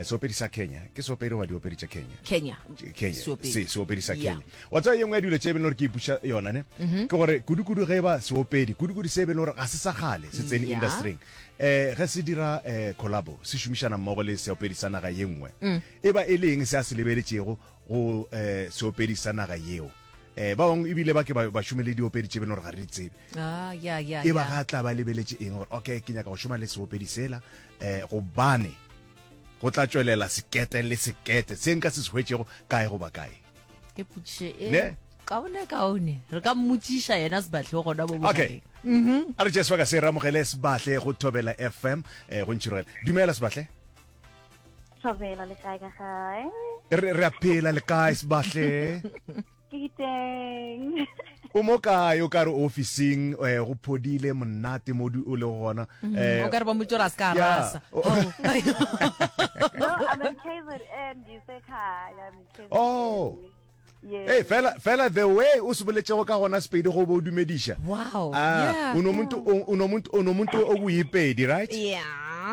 Seopedi sa Kenya. Ke seopedi goba diopedi tša Kenya? Kenya. Kenya. Seopedi. Se, seopedi sa Kenya. Yeah. Wa tseba ye nngwe ya dilo tše e beng gore ke ipuša yona ne, mm -hmm. ke gore kudu-kudu ge e ba seopedi, kudu-kudu se e beng gore ga se sa kgale se tsene yeah. industryng eh ge se dira eh collabo se šomišana mmogo le seopedi sa naga ye nngwe mm. e ba e le eng se a se lebeletšego go eh seopedi sa naga yeo eh ba bangwe ebile ba ke ba šome le diopedi tše beno gore ga re di tsebe ah, e ba ga tla ba lebeletse eng gore okay ke nyaka go šoma le seopedi sela E, gobane go tla tšwelela sekete le sekete se nka se se hwetšego kae goba kae ke potšiše e Ne? kaone kaone re ka mmotšiša yena sebatlhe o gona bo okay bogareng Mhm. a re tšee sebaka se re amogele sebatle go thobela fm um go ntšhirogela dumela sebatle Thobela le kae ka gae? re re a phela le kae sebatle Diteng. o mo kae o ka re ofising eh, go phodile monate mo di- o le gona Mm, Eh, o ka re ba motšora a se ka a Yeah. rasa Oh. No, I'm in KZN, ngisekhaya, I'm in KZN. Oh. Yes. Hey, fela fela the way o se boletšego ka gona sepedi go bo o dumediša wow Ah, yeah, unomuntu unomuntu unomuntu okuyipedi right yeah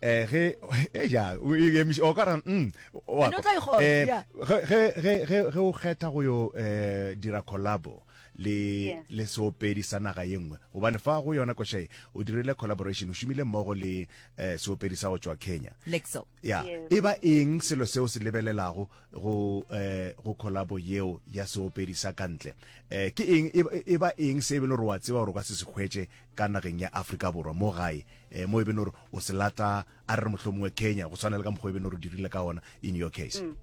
eh ge e ja o e emiša o ka ra mm wa And o tla e kgona, eh yeah. ge ge ge ge ge o kgetha go yo eh dira collabo le Yeah. le seopedi sa naga ye nngwe gobane fa go yona košae o dirile collaboration o šomile mmogo le eh seopedi sa go tšwa Kenya lexo ya Yes. e ba eng selo seo se lebelelago go eh go collabo yeo ya seopedi sa kantle eh ke eng e ba- e ba eng se e be le gore wa tseba gore o ka se se hwetše ka nageng ya Afrika Borwa mo gae, eh, mo e beno gore o se lata a re re mohlomongwe Kenya, go tshwana le ka mokgwa e beno gore o dirile ka ona in your case? Mm.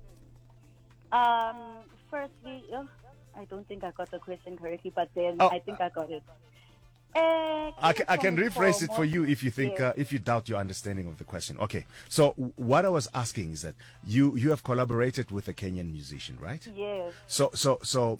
Um, firstly, oh, I don't think I got the question correctly, but then oh. I think I got it. Uh, I, can, I can rephrase it for you if you think uh, if you doubt your understanding of the question. Okay, so what I was asking is that you you have collaborated with a Kenyan musician, right? Yes. So so so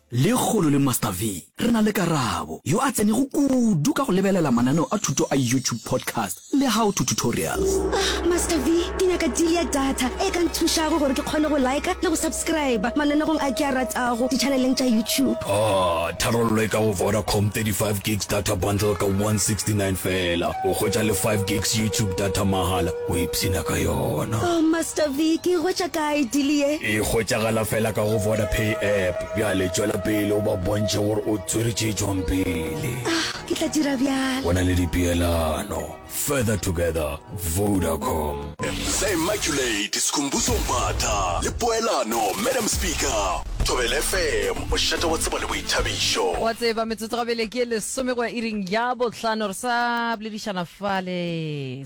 Lekgolo le Master V, re na le Karabo, yo a tsenego kudu ka go lebelela mananeo a thuto a YouTube podcast le How to Tutorials. Ah, Master V, ke nyaka deal ya data e ka nthušago gore ke kgone go liker le go subscriber mananegong a ke a ratago ditšhaneleng tša YouTube. Ah, tharollo e ka go Vodacom, 35 gigs data bundle ka 169 feela, o hwetša le 5 gigs YouTube data mahala. O ipshina ka yona. Oh Master V, ke e hwetša kae deal ye? E hwetšagala fela ka go Vodapay app. Bjale tšwela pele o ba bontšhe gore o tswere tše tšwang pele. Ah, ke tla dira bjalo. Go na le dipeelano. Further together, Vodacom. Msa Immaculate Sikhumbuzo Mbatha le poelano Madam Speaker, Thobela FM, mošate wa tsebo le boithabišo. Wa tseba, metsotso gabele ke e lesome go ya iring ya bohlano. Re sa boledišana fale.